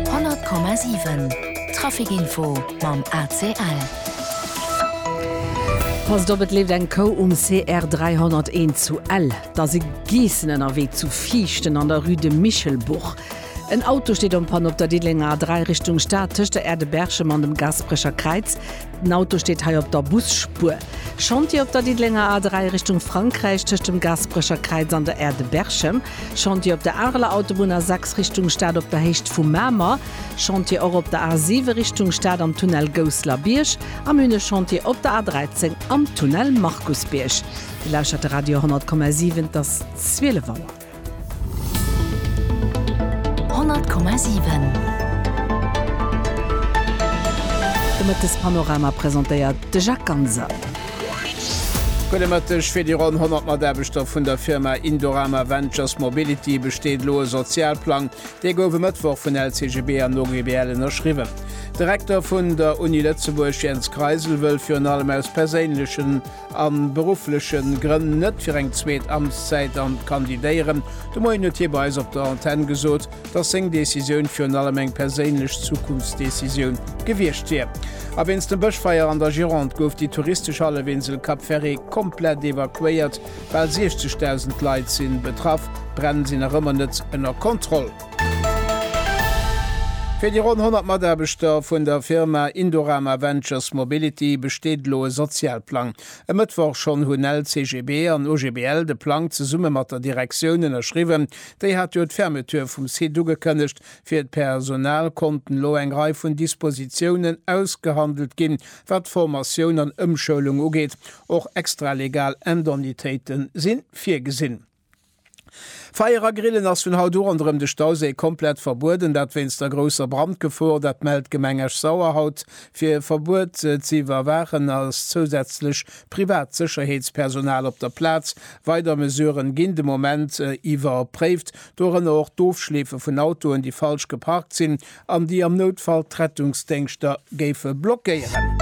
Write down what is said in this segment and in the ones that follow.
100,7 Trafic-Info mam ACL. Passt op, et leeft eng Kou um CR 301 zu Ell. Et ass e Geessen ënnerwee zu Viichten an der Rue de Michelbourg. En Auto steet en Panne op der Diddelenger A3 Richtung Stad tëscht der Aire de Berchem an dem Gasperecher Kräiz. Den Auto steet hei op der Busspuer. Chantier op der Diddelenger A3 Richtung Frankräich tëscht dem Gaasperecher Kräiz an der Aire de Berchem. Chantier op der Areler Autobunn A6 Richtung Stad op der Héicht vu Mamer. Chantier och op der A7 Richtung Stad am Tunnel Gousslerbierg. Am Une Chantier op der A13 am Tunnel Markusbierg. Dir lauschtert de Radio 100,7, et ass 12 Auer. 100,7 De Mëttespanorama presentéiert de Jacques Ganser. Gudde Mëtteg, Fir déi ronn 100 Mataarbechter vun der Firma Indorama Ventures Mobility besteet elo e Sozialplang. Dee gouf e Mëttwoch vun LCGB an OGBL ënnerschriwwen. De Rektor vun der Uni Lëtzebuerg Jens Kreisel wëll virun allem aus perséinlechen. a beruffleche Grënn net fir eng zweet Amtszäit an kandidéieren. De Moien huet hie bei eis op der Antenn gesot, datt seng Decisioun virun allem eng perséinlech Zukunftsdecisioun gewiescht wier. A wéinst dem Bëschfeier an der Gironde gouf déi touristesch Hallefinsel Cap Ferret komplett evakuéiert. Bal 60.000 Leit si betraff, d'Bränn sinn nach ëmmer net ënner Kontroll. Fir déi ronn 100 Mataarbechter vun der Firma Indorama Ventures Mobility besteet elo e Sozialplang. E Mëttwoch schonn hunn LCGB an OGBL de Plang zesumme mat der Direktioun ënnerschriwwen. Déi hat jo d'Fermeture vum Site ugekënnegt. Fir d'Personal konnten elo eng Rei vun Dispositiounen ausgehandelt ginn, wat Formatioun an Ëmschoulung ugeet. Och extralegal Indemnitéite si virgesinn. Feier a Grillen ass vun haut u ronderëm de Stauséi komplett verbueden, dat wéinst der grousser Brandgefor. Dat mellt d'Gemeng Esch-Sauer haut. Fir e Verbuet ze iwwerwaachen, ass zousätzlech privat Sécherheetspersonal op der Plaz. Weider Mesuren ginn de Moment iwwerpréift, dorënner och d'Ofschleefe vun Autoen, déi falsch geparkt sinn, an déi am Noutfall d'Rettungsdéngschter géife blockéieren.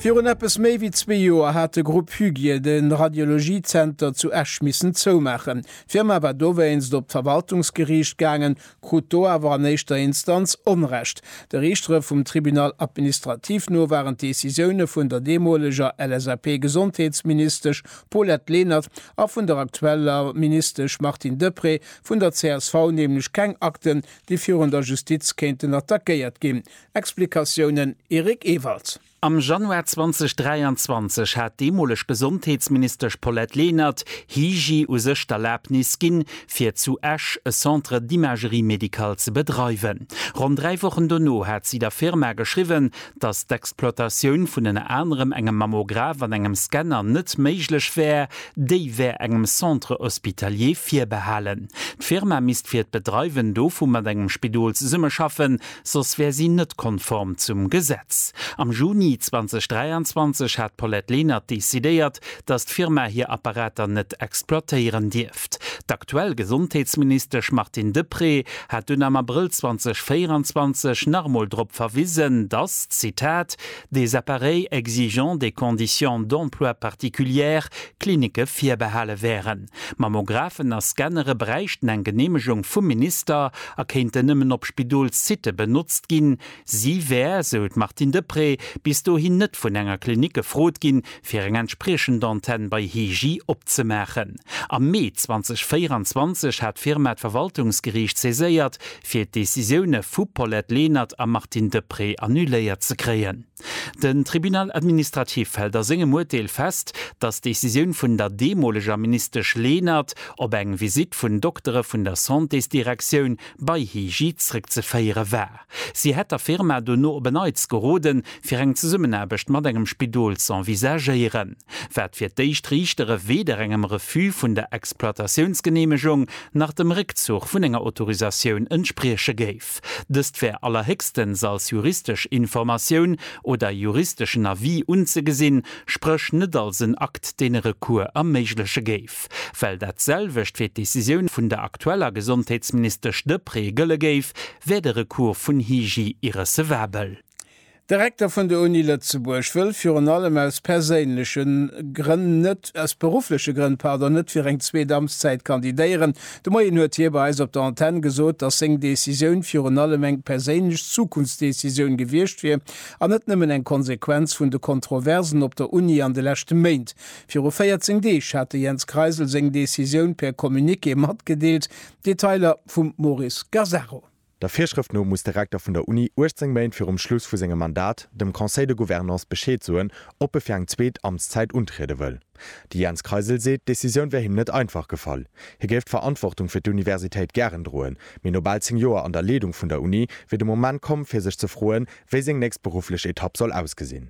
Virun eppes méi wéi zwee Joer hat de Grupp Huguier de Radiologiezenter zu Esch missen zoumaachen. D'Firma war dowéinst op d'Verwaltungsgeriicht gaangen, krut do awer an éischter Instanz Onrecht. De Riichtere vum Tribunal administratif no waren d'Decisioune vun der deemoleger LSAP-Gesondheetsministesch Paulette Lenert a vun der aktueller Ministesch Martine Deprez Vun der csv nämlech keng Akten, déi virun der Justiz kéinten attackéiert ginn. Explikatiounen, Eric Ewald. Am Januar 2023 hat d'deemoleg Gesondheetsministesch Paulette Lenert, Hygi, u sech d'Erlabnis ginn, fir zu Esch e Centre d'imagerie médicale ze bedreiwen. Ronn dräi Wochen dono hat si der Firma geschriwwen, datt d'Exploitatioun vun ënner anerem engem Mammograph an engem Scanner net méiglech wär, déi wär engem Centre hospitalier virbehalen. D'Firma misst fir d'Bedreiwen dovu mat engem Spidol zesummeschaffen, soss wär si net konform zum Gesetz. Am Juni 2023 hat d'Paulette Lenert decidéiert, datt d'Firma hir Apparater net exploitéieren dierf. Geschäft. D'aktuell Gesondheetsministesch Martine Deprez hat dunn am Abrëll 2024 nach emol drop verwisen, datt, Zitat, des appareils exigeant des conditions d'emploi particulières Klinicke virbehale wären. Mammographen a Scannere bräichten eng Geneemegung vum Minister a kéinten nëmmen op Spidolssitte benotzt ginn. Si wär, sou d'Martine Deprez, bis dohin net vun enger Klinik gefrot ginn, fir eng entspriechend Antenn bei Hegi opzemaachen. Am Mee 2024 hat d'Firma d'Verwaltungsgeriicht saiséiert, fir d'Decisioune vu Paulette Lenert a Martine Deprez annuléiert ze kréien. Den Tribunal administratif hält a sengem Urteel fest, datt d'Decisioun vun der deemoleger Ministesch Lenert op eng Visitt vun Doktere vun der Santésdirektioun bei Hegi zréckzeféiere war. Si hätt der Firma dono op en Neits geroden, fir eng Zesummenaarbecht mat engem Spidol z'envisagéieren, wat fir d'éischt Riichtere weder engem Refus vun der Exploitatiounsgeneemegung nach dem Réckzuch vun enger Autorisatioun entsprieche géif. Dëst wär allerhéchstens als juristesch Informatioun oder juristeschen Avis unzegesinn, spréch net als en Akt, deen e Recours erméigleche géif. Kierf, well dat selwecht fir d'Decisioun vun der aktueller Gesondheetsministesch Deprez gëlle géif, wär de Recours vun Hygi irrecevabel. De Rekter vun der Uni Lëtzebuerg wëll virun allem aus perséinleche Grënn net, aus beruffleche Grënn, pardon, net fir eng zweet Amtszäit kandidéieren. De Moien huet hie bei eis op der Antenn gesot, datt seng Decisioun virun allem eng perséinlech Zukunftsdecisioun gewiescht wier an net nëmmen eng Konsequenz vun de Kontroversen op der Uni an de leschte Méint. Viru 14 Deeg hat de Jens Kreisel seng Decisioun per Communiqué matgedeelt, Detailer vum Maurice Gasaro. Der Virschrëft no muss de Rekter vun der Uni 18 Méint virum Schluss vu sengem Mandat dem Conseil de Gouvernance Bescheed soen, ob e fir eng zweet Amtszäit untriede wëll. De Jens Kreisel seet, d'Decisioun wär him net einfach gefall. Hie géif d'Verantwortung fir d'Universitéit gären droen, mee no bal 10 Joer an der Leedung vun der Uni wier de Moment komm, fir sech ze froen, wéi seng nächst berufflech Etapp soll ausgesinn.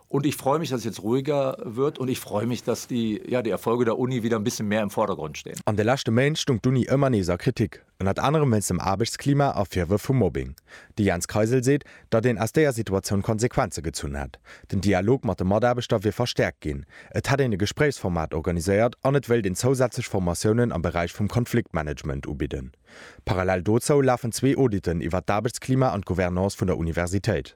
Und ich freue mich, dass jetzt ruhiger wird, und ich freue mich, dass die, ja, die Erfolge der Uni wieder ein bisschen mehr im Vordergrund stehen. An de leschte Méint stung d'Uni ëmmer nees a Kritik, ënnert anerem wéinst dem Aarbechtsklima a Virwërf vu Mobbing. De Jens Kreisel seet, datt een aus deeër Situatioun Konsequenze gezunn hätt. Den Dialog mat de Mataarbechter wier verstäerkt ginn, et hätt een e Gespréichsformat organiséiert an et wéilt een zousätzlech Formatiounen am Beräich vum Konfliktmanagement ubidden. Parallel dozou lafen zwee Auditen iwwer d'Aarbechtsklima an d'Gouvernance vun der Universitéit.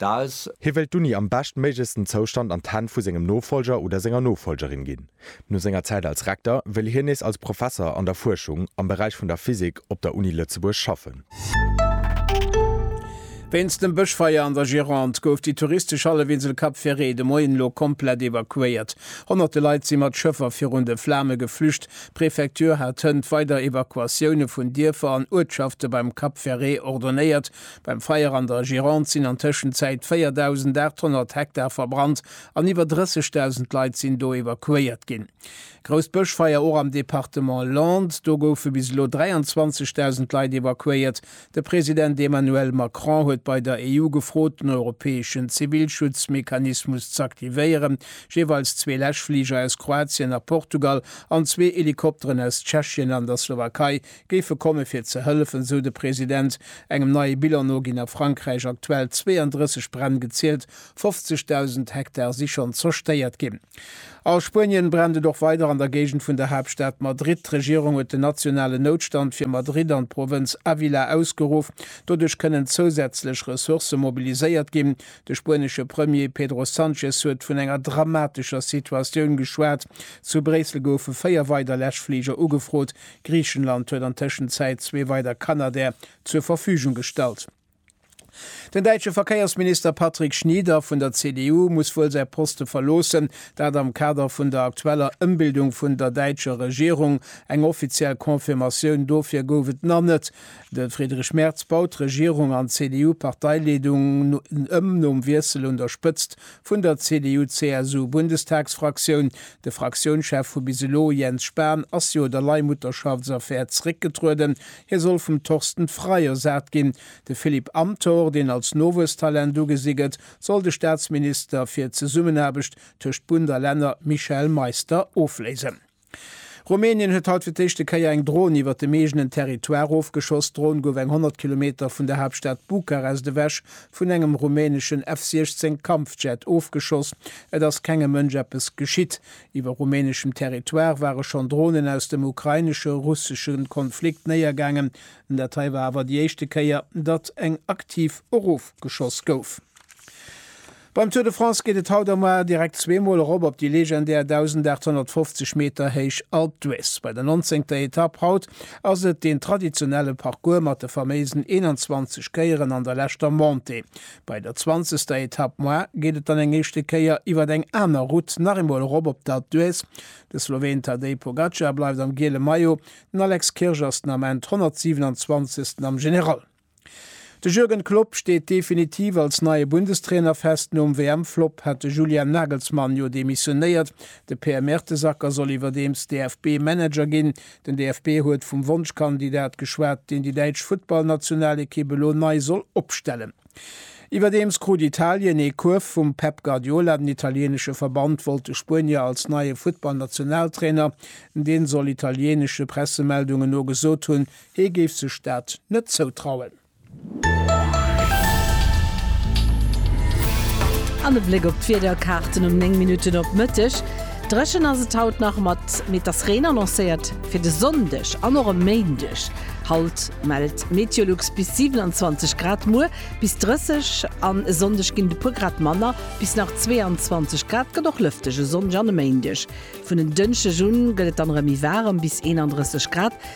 D'Aes. Hie wëilt d'Uni am beschtméiglechsten Zoustand an d'Hänn vu sengem Nofolger oder senger Nofolgerin ginn. No senger Zäit als Rekter wëll hien nees als Professer an der Fuerschung am Beräich vun der Physik op der Uni Lëtzebuerg schaffen. Wéinst dem Bëschfeier an der Gironde gouf déi touristesch Hallefinsel Cap Ferret de Moien elo komplett evakuéiert. Honnerte Leit si mat Schëffer virun de Flame geflücht. D'Prefecture hat hënt weider Evakuatioune vun Dierfer an Uertschafte beim Cap Ferret ordonéiert, Beim Feier an der Gironde sinn an Tëschenzäit 4.800 Hektar verbrannt an iwwer 30.000 Leit sinn do evakuéiert ginn. Grousst Bëschfeier och am Departement Landes, do goufe bis elo 23.000 Leit evakuéiert. De President Emmanuel Macron huet bei der EU gefrot, den europäeschen Zivilschutzmechanismus z'aktivéieren. Jeeweils zwee Läschfliger aus Kroatien a Portugal an zwee Helikopteren aus Tschechien an der Slowakei géife komme fir ze hëllefen, sou de President. Engem neie Bilan no ginn a Frankräich aktuell 32 Bränn gezielt, 50.000 Hektar si schonn zerstéiert ginn. A Spuenien brennt et och weider an der Géigend vun der Haaptstad Madrid. D'Regierung huet den nationalen Noutstand fir Madrid an d'Provënz Ávila ausgeruff. Doduerch kënnen zousätzlech Ressourcë mobiliséiert ginn. De spuenesche Premier Pedro Sánchez huet vun enger dramatescher Situatioun geschwat. Zu Bréissel goufe véier weider Läschfliger ugefrot, Griichenland huet an Tëschenzäit zwee weider Canadair zur Verfügung gestallt. Den däitsche Verkéiersminister Patrick Schnieder vun der CDU muss wuel säi Poste verloossen, dat am Kader vun der aktueller Ëmbildung vun der däitscher Regierung. Eng offiziell Confirmatioun dofir gouf et nach net. De Friedrich Merz baut d'Regierung an d'CDU-Parteileedung ëm nom Wiessel un der Spëtzt Vun der CDU-CSU-Bundestagsfraktioun, de Fraktiounschef vu bis elo, Jens Spahn, ass jo der Leihmutterschaftsaffär zréckgetrueden. Hie soll vum Torsten Frei ersat ginn. De Philippe Amthor, deen als Nowuesstalent ugesi gëtt, soll de Staatsminister fir d'Zesummenaarbecht tëscht Bund a Länner Michel Meister ofléisen. Rumänien huet haut fir d'éischte Kéier eng Dron iwwert dem eegenen Territoire ofgeschoss. D'Dron gouf eng 100 Kilometer vun der Haaptstad Bukarest ewech vun engem rumäneschen F-16 Kampfjet ofgeschoss. Et ass kengem Mënsch eppes geschitt. Iwwer rumäneschem Territoire ware schonn Dronen aus dem ukrainesche, russesche Konflikt néiergaangen. Dat hei war awer déi éischte Kéier, datt eng aktiv erofgeschoss gouf. Beim Tour de France geet et haut a moar direkt zweemol erop op déi legendär 1.850 Meter héich Alpe d'Huez. Bei der nonzéngter Etapp haut ass et deen traditionelle Parcours mat de faméisen 21 Kéieren an der leschter Montée. Bei der zwanzegster Etapp moar geet et dann eng éischte Kéier iwwert eng aner Route nach eemol erop op d'Alpe d'Huez. De Sloween Tadej Pogacar bleift am giele Maillot, den Alex Kirch ass den Ament 127. am General. De Jürgen Klopp steet definitiv als neie Bundestrainer fest. Nom WM-Flop hat de Julian Nagelsmann jo demissionéiert. De Per Mertesacker soll iwwerdeems DFB-Manager ginn. Den DFB huet vum Wonschkandidat geschwat, deen déi däitsch Futtballnationalekipp elo nei soll opstellen. Iwwerdeems krut Italien ee Kuerf vum Pep Guardiola. Den italieenesche Verband wollt de Spuenier als neie Futtballnationaltrainer, dee soll italienesche Pressemeldungen no gesot hunn, Hie géif sech dat net zoutrauen. An e Bléck op d'Wiederkaarten um 9 Minutten op Mëtteg. Dréchen ass et haut nach mat meter's Reen annoncéiert fir de Sonndeg an och e Méindeg. Haut mellt Meteolux bis 27 Grad, muer bis 30 an e Sonndeg ginn et e puer Grad manner, bis nach 22 Grad. Gëtt och lëfteg e Sonndeg an e Méindeg. Vun en Dënschdeg un gëtt et dann erëm méi waarem, bis 31 Grad.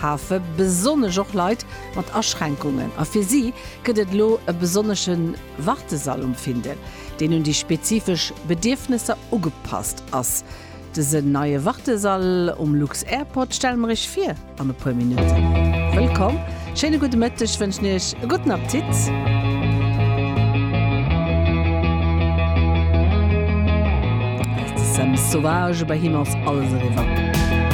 hafe besonnesch och Leit mat Aschränkungen a fir si gëtt et elo e besonnesche Wartesall um Findel, deen un déi spezifesch Bedierfnesser ugepasst ass. Dësen neie Wartesall um Lux-Airport stelle mer Iech vir an e puer Minutten. Wëllkomm, schéine gudde Mëtteg wënschen Iech, e gudden Appetit! Des Sèmes sauvages, bei him ass alles eriwwer.